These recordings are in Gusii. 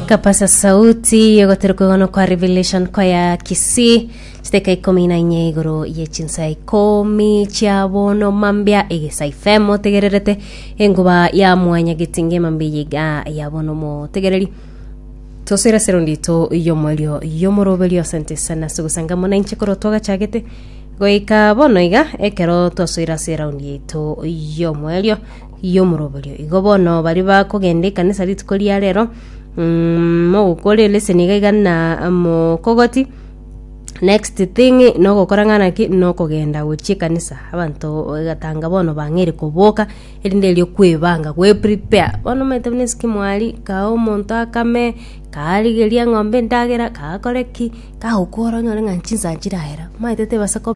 Kapasa sauti yogotera kwegona kwa Revelation Choir Kisii chiteka ikomi na inye igoro ye chinsa ikomi chia bono mambia egesa FM motegererete enguba ya mwanya getinge mambia yiga ya bono motegereri tosira sero ndito yomorio yomoroberio asante sana sugusanga mona inche koro twagachagete goika bono iga ekero twasoira ase eraundi yaito yomoerio y'omoroberio. Igo bono baria bakogenda ekanisa rituko ria rero, mm, mogokora eleseni iga iga na mokogoti, next thing nogokora ng'ana ki, nokogenda gochia ekanisa. Abanto egatanga bono bang'eire koboka, erinde erio kwebanga gwe prepare. Bono omanyete buna eskim aria, kaa omonto akame, karigeria eng'ombe endagera, kagakore ki, kagokora onyore ng'a chinsa chirahera. Omanyete tibasa ko.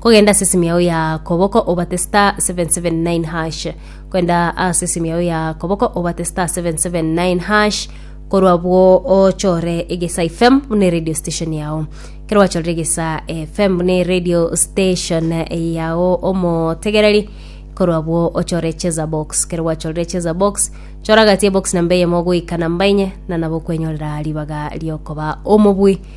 Kogenda ase esimi yao ya koboko obate star 779 hash. Kogenda ase esimi yao ya koboko obate star 779 hash. Korwa abwo ochore egesa FM buna eradio station yao. Kero wachorire egesa FM buna eradio station yao omotegereri korwa abwo ochore cheza box. Kero gwachorire cheza box chora gati ebox namba eyemo goika namba enye na nabo okwenyorera ribaga riokoba omobui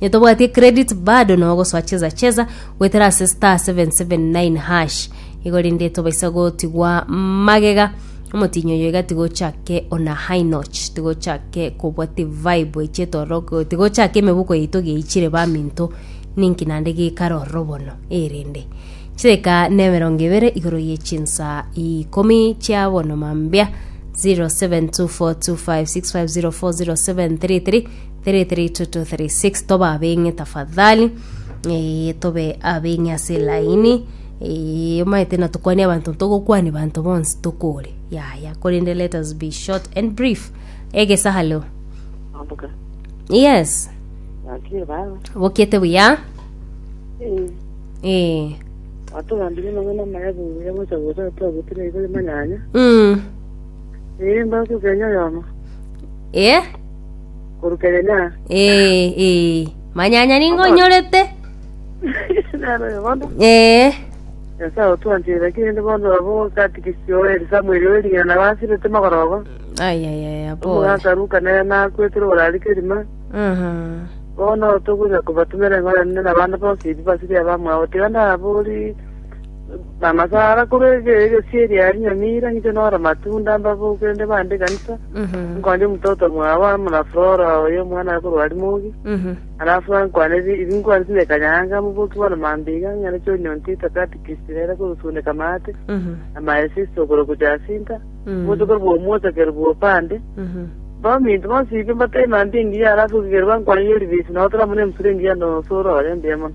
Nitobwatie credit bado na ogosoa cheza cheza goetera ase star 779 hash igo rinde tobaisa gotigwa magega omotinyi oyo iga tigochake ona high notch tigochake kobwati vibe echi etororo tigochake emebuko yaito geichire baminto ninki nande gekare ororo bono erinde chideka na emerongo ebere igoro ye chinsa ikomi chia bono mambia 0724256504 0733 33-36 toba abeng'e tafadhali eh, tobe abeng'e ase elaini eh, omaete na tukwanie abanto togokwani banto bonsi tokore yaya korende let us be short and brief egesa halo Ambuka. yes Wakie baba. bokiete buya Eh. eh. Watugambire mang'ana maya buya gocha gocha twagutire igore manyanya. mm. Eh mbaku kenya yama. eh? Korukegenya. ee ee manyanya ningo onyorete Nero oyo bono. ee Nyasae otwanchire naki rende bono abo katikisi oeri Samuel oeri ng'a nabo asirete magorogo. ayayaya pole Omogaka Ruka nere nakwetire orari kerima. Aha. Bono togocha kobatumera eng'ora nende abande bonsi ebi basiria bamwabo. Tiga nabori Bamasara korwa ege- egesu eria ya rinyoni ira ng'ite nore matunda mbaboke rende bande ekanisa, nkonye omototo mwabo amo na Flora oyo omwana are korwa Arimogi, alafu ankwane ri- rinkwane rinde ekanyanga moboki bore mambiga, ng'ende choni ontita katikisi rere kogosundeka maate, na my sister okorokwa Jacinta, omonto korwa omwochakeri bw'opande, baminto bonsi iga mbatebie mambia engiya alafu igere bankwane yori bisi nabo tore amo na emusura engiya na osore oye mbuya mono.